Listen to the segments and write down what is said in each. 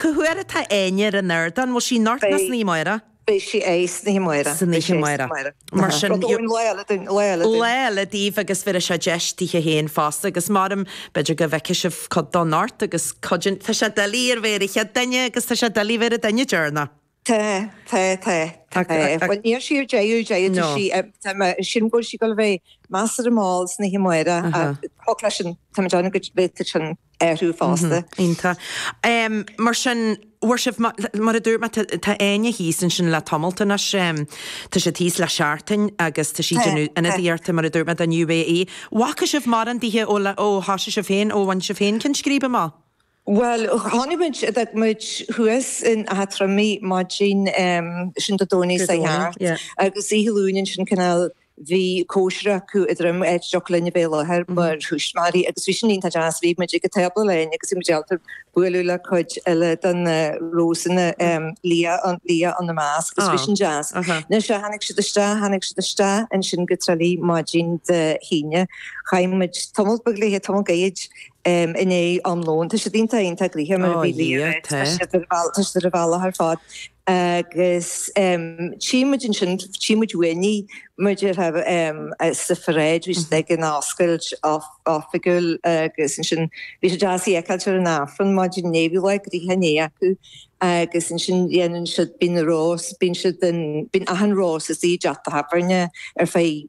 Cá huair atá Áine ar an ardán? Bhfuil sí anocht ná san oíche amárach? Beidh sí air san oíche amárach. San oíche amárach. Mar sin. Rud amháin, lá eile dúinn, lá eile dúinn. Lá eile daoibh agus bheir seo deis daoithe féin fosta agus mairim, b'fhéidir go bhfeicfidh sibh cuid de anocht agus cuid. Tá sé doiligh a bheith ar an chéad duine agus tá sé doiligh a bheith ar an duine deireanach. Tá, tá, tá, tá. Bhuel, níl sí ar deireadh, deireadh, sílim go bhfuil sí ag dul a bheith measartha mall san oíche amárach thig leis an, táimid ann go bhféadfadh sin athrú fosta. Iontach. Mar sin, bhfuair sibh, mar a dúirt mé, tá Áine thíos ansin le tamalt anois, tá sí thíos le seachtain agus tá sí ag déanamh ionadaíochta, mar a dúirt mé, don UAE. Bhfaca sibh mórán daoithe ó, ó, thosaigh sibh féin, ó bhain sibh féin ceann scríbe amach? Bhuel, tháinig muid, d'fhág muid thuas in Áth Troim í maidin sin Dé Domhnaigh seo thart agus oíche Luain ansin cineál bhí cóisir acu i dTroim, áit a dtiocfadh linn a bheith i láthair mar thuismitheoirí agus bhí sin iontach deas, bhí muid ag an tábla linn agus bhí muid ábalta bualadh le cuid eile de na Rósanna, Leah, Leah ina measc agus bhí sin deas. Anois tháinig siad isteach, tháinig siad isteach ansin go Trá Lí maidin Dé hAoine, chaith muid tamalt beag léithe, tamalt gairid. inné am lóin. Tá siad iontach iontach gnoitheach mar a bhí Liam ag rá. Tá siad ar bheal tá siad ar an bhealach ar fad agus tchím muid ansin tchím muid uainn í mar a déarfá sa pharáid bhí siad ag an oscailt oifigiúil agus ansin bhí sé deas í a fheiceáilt ar an Aifreann maidin inné bhí lá gnoitheach inné acu agus ansin dhéanann siad bíonn na rós bíonn siad an bíonn achan rós istigh i dteach tábhairne ar feadh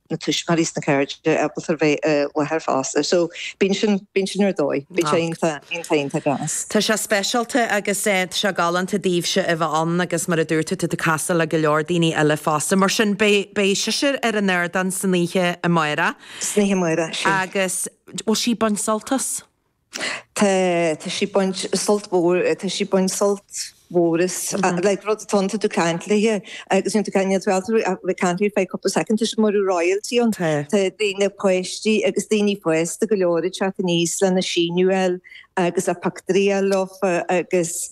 na tuismitheoirí is na cairde ábalta bheith i láthair fosta so bíonn sin bíonn sin ar dóigh bíonn sé iontach iontach iontach deas. Tá sé speisialta agus tá sé galánta daoibhse a bheith ann agus mar a dúirt tú tá tú ag castáil le go leor daoine eile fosta mar sin beidh beidh sise ar an ardán san oíche amárach. San oíche amárach, sin. Agus bhfuil sí ag baint sult as. Tá sí baint sult mhór tá sí baint sult mhór is like rud atá iontach tú caint léi agus níl tú caint níl tú ag tú ag caint léi feadh cúpla soicind tá sé mar a bheadh royalty ann. Tá daoine páistí agus daoine fásta go leor ag teacht aníos lena síniú a fháil agus a bpictiúirí a fháil leofa agus.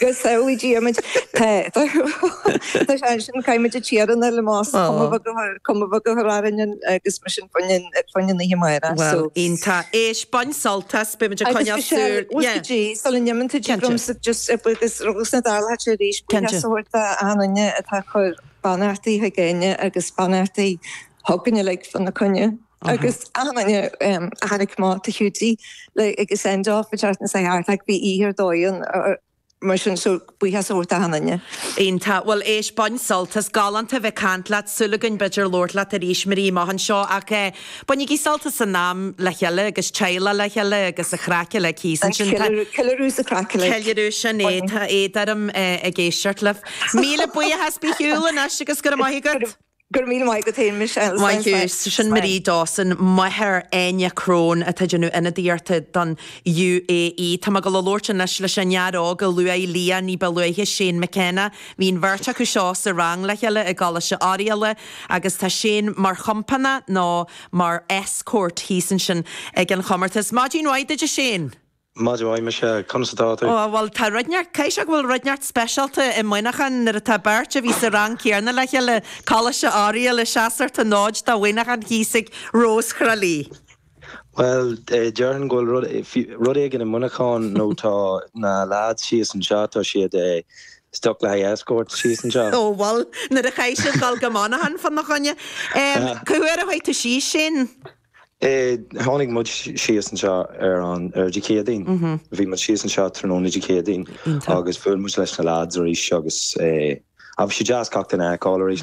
Go samhlaí díomid, tá sé ansin, caithfimid a tírionadh le más cuma bheag a cuma bheag a chur orainn agus mar sin fá choinne na hoíche amárach. Bhuel, iontach. Éist, bain sult as, beimid ag coinneáil súil. Agus Michelle, uaithi di, sula n-imíonn tú dtig liomsa just agus rugadh sna Dála thart arís, buíochas a thabhairt do achan duine atá ag cur beannachtaí chuig Áine agus beannachtaí chugainne le fada na coinne. agus amanna tháinig mórán acu go dtí an send off a dtáinig siad thart like bhí oíche ar dóigh ann mar sin so buíochas a thabhairt daofa uilig. Iontach. Bhuel éist, bain sult as. Galánta a bheith ag caint leat. Súil againn b'fhéidir labhairt leat arís amárach anseo ach eh bainigí sult as an am le chéile agus teaghlaigh le chéile agus an chraic uilig thíos ansin. Tá. Ceiliúradh is an chraic uilig. Ceiliúradh, sin é. Tá éad orm eh ag éisteacht libh. Míle buíochas, bí ar shiúl anois agus go raibh maith agat. Go raibh míle maith agat féin, Michelle. Maith thú. Sin Máire Dawson, máthair Áine Crone, atá ag déanamh ionadaíochta don UAE. Tá mé go le labhairt anois leis an fhear óg a luaigh Liadh ní ba luaithe, Shane McKenna. Bhí an bheirt acu seo sa rang le chéile i gColáiste Oiriall agus tá Shane mar chompánach, nó mar escort, thíos ansin ag an chomórtas. Maidin mhaith duit, a Shane! Maidin mhaith Michelle, conas atá tú? Ó, bhuel, tá rud inteacht, caithfidh sé go bhfuil rud inteacht speisialta i Muineachán nuair atá beirt a bhí sa rang céanna le chéile, Coláiste Oiriall ag seasamh an fhóid do Mhuineachán thíos ag Rós Thrá Lí. Bhuel, déarfainn go bhfuil rud, rud éigin i Muineachán nó tá na leaids síos anseo, tá siad stuck le haghaidh escorts síos anseo. Ó, bhuel, nuair a chaithfidh siad dul go Muineachán fá na choinne. Cé uair a chuaigh tú síos sin? Tháinig muid síos anseo ar an Dé Céadaoin. Bhí muid síos anseo tráthnóna Dé Céadaoin agus bhuail muid leis na lads arís agus bhí sé deas gach duine a fheiceáil arís.